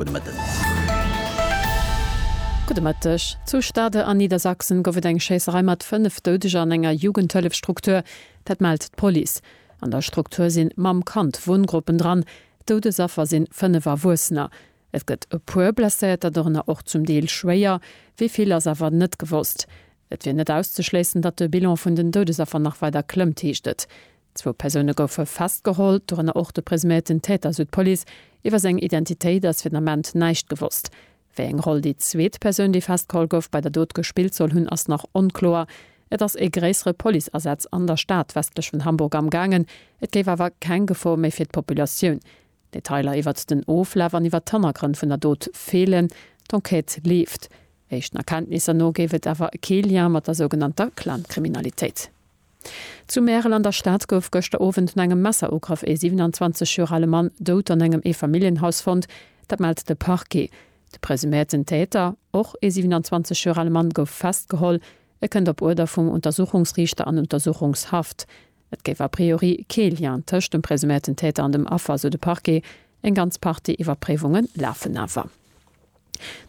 Gudde Mëtten. Gudde Mëtteg. Zu Stade an Niedersachsen gouf et eng Schéisserei mat 5 Doudeger an enger Jugendhëllefstruktur. Dat mellt d'Police. An der Struktur si Mamm, Kand, Wunngruppen dran. Doudesaffer sinn 5 Erwuessener. Et gëtt e puer Blesséierter, dorënner och zum Deel schwéier. Wéi vill ass awer net gewosst. Et wier net auszeschléissen, datt de Bilan vun den Doudesaffer nach weider klëmmt, heescht et. Zwou Persoune goufe festgeholl, dorënner och de presuméierten Täter, sou d'Police. Iwwer seng Identitéit ass fir den Ament näischt gewosst. Wéi eng Roll déi zweet Persoun, déi festgeholl gouf, bei der Dot gespillt soll hunn, ass nach onkloer. Et ass ee gréissere Policeasaz an der Stad westlech vun Hamburg am gaangen. Et géif awer keng Gefor méi fir d'Populatioun. Detailer iwwert den Oflaf an iwwert d'Hannergrënn vun der Dot feelen. D'Enquête leeft. Éischten Erkenntnisser no géif et awer kee Lien mat der sougenannter Clan-Kriminalitéit. Zu Märel an der Stad gouf gëschter Owend no engem Messerugraff ee 27 Joer ale Mann dout an engem Eefamilljenhaus fonnt. Dat mellt de Parquet. De presuméierten Täter, och ee 27 Joer ale Mann, gouf festgeholl. E kënnt op Uerder vum Untersuchungsriichter an Untersuchungshaft. Et géif a priori kee Lien tëscht dem presuméierten Täter an dem Affer, sou de Parquet. Eng ganz Partie Iwwerpréiwunge lafen awer.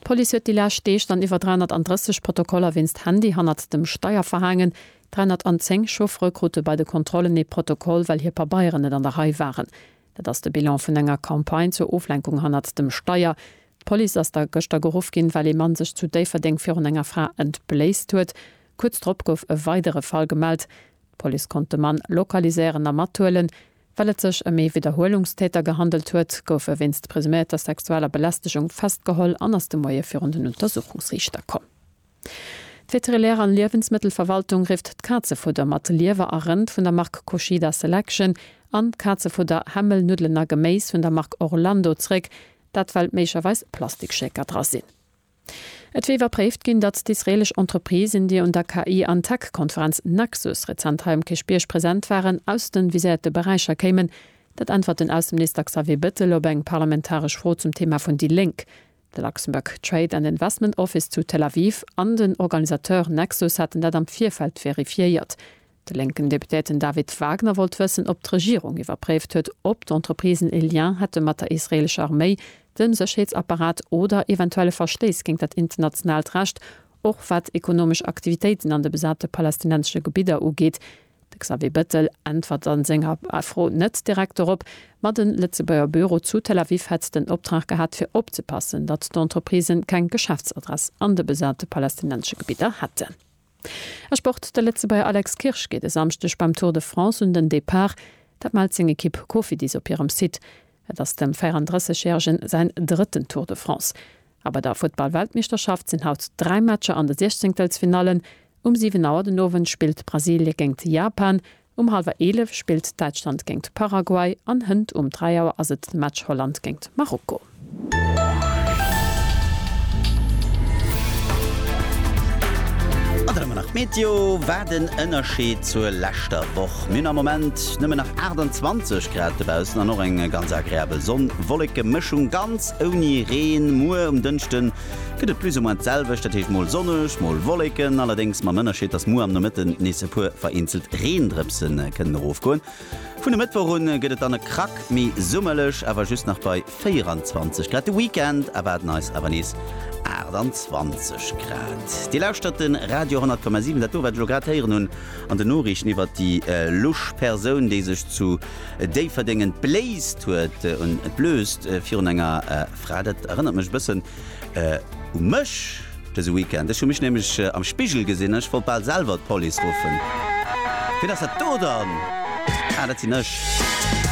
D'Police huet déi lescht Deeg dann iwwer 330 Protokoller wéinst Handy hannert dem Steier verhaangen. 310 Chauffere krute bei de Kontrollen ee Protokoll, well hir Pabeieren net an der Rei waren. Dat ass de Bilan vun enger Campagne zur Oflenkung hannert dem Steier. D'Police ass da gëschter geruff ginn, well ee Mann sech zu Déifferdeng virun enger Fra entbléisst huet. Kuerz drop gouf e weidere Fall gemellt. D'Police konnt de Mann lokaliséieren a mathuelen. Well et sech ëm ee Widderhuelungstäter gehandelt huet, gouf e wéinst presumierter sexueller Belästegung festgeholl an ass de Moie virun den Untersuchungsriichter komm. D'Veterinär an Liewensmëttelverwaltung rifft d'Kazefudder mat Liewer a Rënd vun der Mark Kushida Selection an d'Kazefudder, Hämmel, Nuddelen a Geméis vun der Mark Orlando zréck, dat well méiglecherweis Plastikschäker dra sinn. Et wier iwwerpréift ginn, datt d'israelesch Entreprisen, déi un der KI an Tech Konferenz Nexus rezent hei um Kierchbierg present waren, aus de viséierte Beräicher kéimen. Dat äntwert den Ausseminister Xavier Bettel op eng parlamentaresch Fro zum Thema vun déi Lénk. De Luxembourg Trade and Investment Office zu Tel Aviv an den Organisateur Nexus haten dat am Virfeld verifiéiert. De lénken Deputéierten David Wagner wollt wëssen, ob d'Regierung iwwerpréift huet, ob d'Entreprisen e Lien hätte mat der israeelescher Arméi, dem Sécherheetsapparat oder eventuelle Verstéiss géint dat internationaalt Recht, och wat ekonomesch Aktivitéiten an de besate palästinensesche Gebidder ugeet. De Xavier Bettel äntwert a senger Fro net direkt dorop, ma den Lëtzebuerger Büro zu Tel Aviv hätt den Optrag gehat, fir opzepassen, datt d'Entreprisen keng Geschäftsadress an de besate palästinensesche Gebidder hätten. A Sport, De Lëtzebuerger Alex Kirsch geet e Samschdeg beim Tour de France un den Depart. Dat mellt seng Ekipp Cofidis op hirem Site. Et ass dem 34 Järegen säin drëtten Tour de France. A bei der Futtballweltmeeschterschaft sinn haut dräi Matcher an de Siechzéngtelsfinallen. Um 7 Auer den Owend spillt Brasilien géingt Japan Um hallwer 11 spillt Däitschland géingt Paraguay an hënt um 3 Auer ass et de Match Holland géingt Marokko. An dann hu mer nach d'Meteo. Wat en Ënnerscheed zur leschter Woch. Mir hunn am Moment nëmmen nach 28 Grad dobaussen an och eng ganz agreabel Sonn-Wolleke-Mëschung, ganz ouni Reen. Muer um Dënschden gëtt et plus ou moins d'selwecht, dat heescht mol sonneg, mol Wolleken, allerdéngs mam Ënnerscheed, dass muer am Nomëtten nees e puer vereenzelt Reendrëpse kënnen erofgoen. Vun e Mëttwoch un gëtt et dann e Krack méi summerlech, awer just nach bei 24 Grad. De Weekend erwaarden eis awer nees 28 Grad. Dir lauschtert de Radio 10,7. Dat do, wat ech elo grad héieren hunn an den Noriichten iwwert déi lusch Persoun, déi sech zu Déifferdengen bléist huet, un d'Blööst virun enger Fra, Dat erënnert mech e bëssen u mech dëse Weekend. Ech hu mech nämlech am Spigel gesinn an ech wollt bal selwer d'Police ruffen. Wien ass dat do dann? Ah, dat sinn ech.